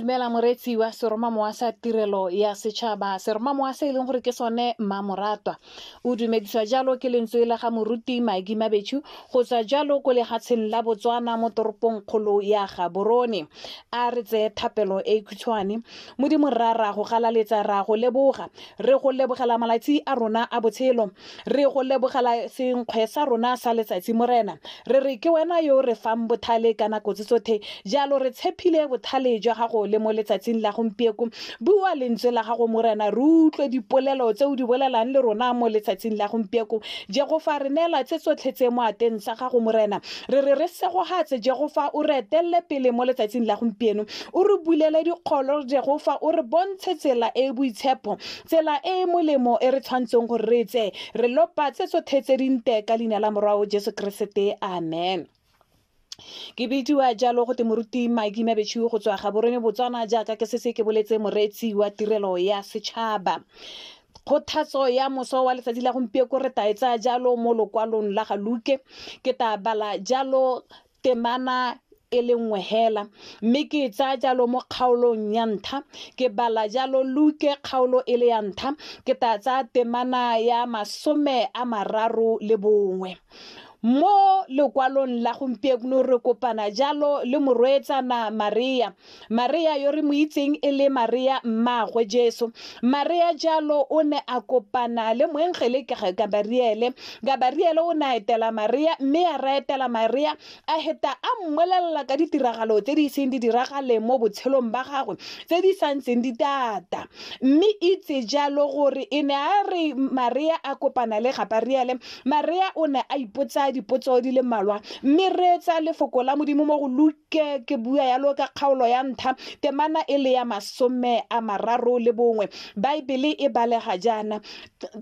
dumela moreetsi wa seromamowa sa tirelo ya setšhaba seromamowa se e leng gore ke sone mmamoratwa o dumediswa jalo ke lentswe la ga moruti maki mabetshu go tswa jalo ko legatsheng la botswana mo toropong kgolo ya gaborone a re tseye thapelo e khutshwane modimo rra ra go galaletsa ra go leboga re go lebogela malatsi a rona a botshelo Re go lebogela senkgwe sa rona sa letsatsi, Morena. Re re ke wena yo o re fang bothale ka nako tse tsothe, jalo re tshephile bothale jwa gago le mo letsatsing la gompieko. Bua lentswe la gago, Morena, re utlwe dipolelo tse o di bolelang le rona mo letsatsing la gompieko. Jehofa, re neela tse tsotlhe tse mo ateng sa gago, Morena. Re re re segogatse, Jehofa, o re etelele pele mo letsatsing la gompieno. O re bulele dikgolo, Jehofa, o re bontshe tsela e e boitshepo. Tsela e e molemo e re tshwantseng gore re tse re lopa tse tsothe tse dinte ka leina la morwao Jesu Keresete. Amen. Ke bidiwa jalo go te moruti Maki Mabetšhiu go tswa Gaborone Botswana jaaka ke sese ke boletse moreetsi wa tirelo ya setšhaba. Kgothatso ya moso wa letsatsi la gompieko re taetsa jalo mo lokwalong la ga Luke. Ke ta bala jalo temana e le nngwe hela mme ke e tsaya jalo mo kgaolong ya ntlha ke bala jalo luke kgaolo e le ya ntlha ke tla tsaya temana ya masome a mararo le bongwe mo lekwalong la gompieno re kopana jalo le morweetsana maria Marea yo re mo itseng e le Marea mmaagwe Jesu. Marea jalo o ne a kopana le moengele Gabariele. Gabariele o ne a etela Marea mme a ra etela Marea a heta a mmolelela ka ditiragalo tse di iseng di diragale mo botshelong ba gagwe tse di sa ntseng di tata. Mme itse jalo gore e ne a re Marea a kopana le Gabariele, Marea o ne a ipotsa dipotso di le mmalwa mme reetsa lefoko la Modimo mo go Luke ke ke bua yalo ka kgaolo ya ntlha temana e le ya masome a mararo le bongwe baebele e balega jaana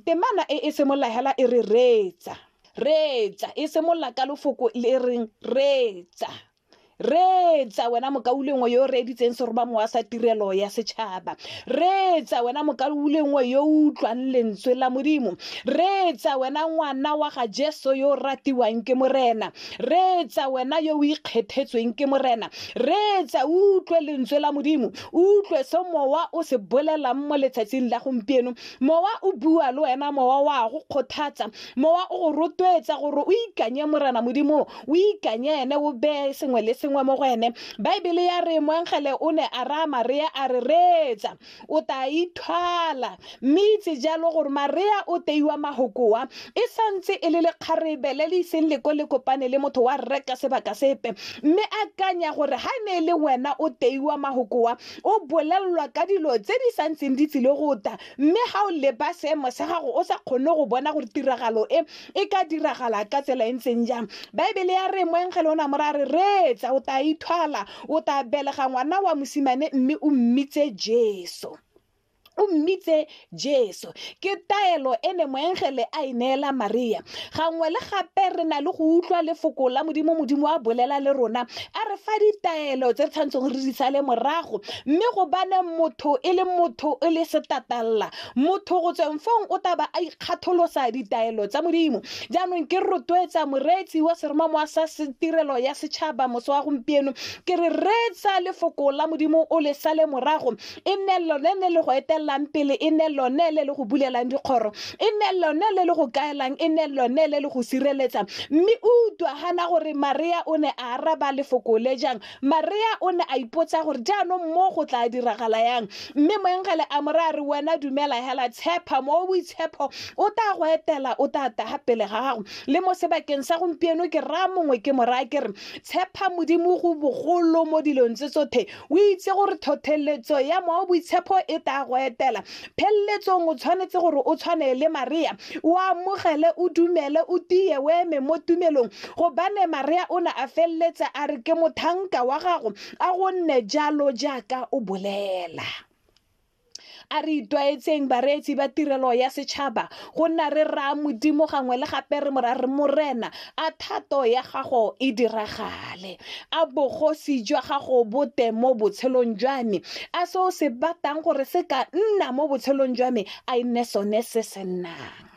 temana e e simolola hela e re reetsa reetsa e simolola ka lofoko le reng reetsa reetsa wena mokaulengwe yo o reeditseng seroba mowa sa tirelo ya setšhaba reetsa wena mokaulengwe yo o utlwang lentswe la modimo reetsa wena ngwana wa ga jesu yo o ratiwang ke morena reetsa wena yo o ikgethetsweng ke morena reetsa o utlwe lentswe la modimo o utlwe se mowa o se bolelang mo letsatsing la gompieno mowa o bua le wena mowa wa go kgothatsa mowa o go rotloetsa gore o ikanye morena modimo o ikanye ene o beye sengwe le sengwe mo go ene baebele ya re moengele o ne a raya maria a re reetsa o tla ithwala mme itse jalo gore marea o teiwa mahokoa e santse e le lekgarebe le le iseng le ko le kopane le motho wa rre ka sebaka sepe mme a kanya gore ha e ne e le wena o teiwa mahokoa o bolelelwa ka dilo tse di santseng di tsile go ta mme ga o leba seemo sa gago o sa kgone go bona gore tiragalo e e ka diragala ka tsela e ntseng jang baebele ya re moengele o ne a mo ra re reetsa o tla ithwala O tla belega ngwana wa mosimane mme o mmitse Jesu. o mmitse jesu ke taelo e ne moengele a e neela maria gangwe le gape re na le go utlwa lefoko la modimo modimo a bolela le rona a re fa ditaelo tse re tshwanetseng re di sale morago mme go bane motho e le motho e le setatalla motho go tsweng fong o taba a ikgatholosa ditaelo tsa modimo jaanong ke rotloetsa moreetsi wa seromamowa sa tirelo ya setšhaba moso wa gompieno ke re reetsa lefoko la modimo o le sale morago e nne lone le le go etelelang pele e nne lone le le go bulelang dikgoro e nne lone le le go kaelang e nne lone le le go sireletsa mme o utlwa gana gore maria o ne a araba lefoko le jang Marea o ne a ipotsa gore jaanong mo go tla diragala yang, mme moengele a mo raya re wena dumela hela, tshepa mo boitshepho o tla go etela, o tla taga pele ga gago. Le mo sebakeng sa gompieno ke raya mongwe ke mo raya ke re tshepa Modimo go bogolo mo dilong tse tsothe, o itse gore thothelletso ya moa boitshepho e tla go etela, pheleletsong o tshwanetse gore o tshwane le marea o amogele o dumele o tiye o eme mo tumelong gobane marea o ne a feleletse a re ke mothanka wa gago a gonne jalo jaaka o bolela a re itwaetseng bareetsi ba tirelo ya setšhaba go nna re raya modimo gangwe le gape re mora re morena a thato ya gago e diragale a bogosi jwa gago bote mo botshelong jwa me a se o se batang gore se ka nna mo botshelong jwa me a e nne sone se se nnang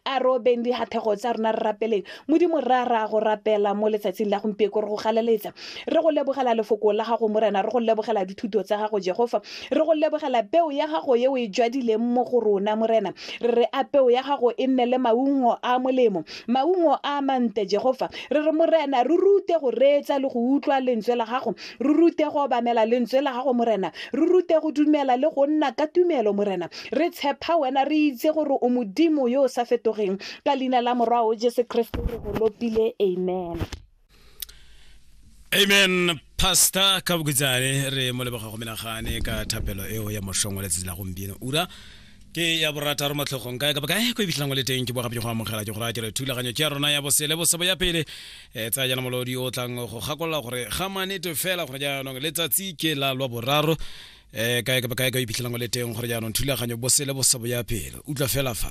a re obeng dihathego tsa rona re rapeleng modimo ra ra go rapela mo letsatsing la gompieko re go galeletsa re go lebogela lefoko la gago morena re go lebogela dithuto tsa gago jehofa Re go lebogela peo ya gago e o e jwadileng mo go rona, Morena. Re re a peo ya gago e nne le maungo a a molemo, maungo a a mantle, Jehofa. Re re, Morena, re rute go reetsa le go utlwa Lentswe la gago. Re rute go obamela Lentswe la gago, Morena. Re rute go dumela le go nna ka tumelo, Morena. Re tshepa Wena, re itse gore o Modimo yo o sa fetogeng. Ka Leina la Morwa'o Jesu Keresete re go lopile. Amen. amen pastor ka bokutsane re mo leboga go menagane ka thapelo eo ya mošong wa letsatsi la gompieno ura ke ya borataro matlhogong kae kapa kae ko e fitlhang o le teng ke bogape go amogela ke go raya ke re thulaganyo ke ya rona ya bosele bosebo ya pele um tsaya jana molodi o tlang go gakolola gore ga manete fela gore jaanong letsatsi ke la lwa boraro um kae kapa kae ka o iphitlhelang o le teng gore jaanong thulaganyo bosele bosebo ya pele utlwa fela fa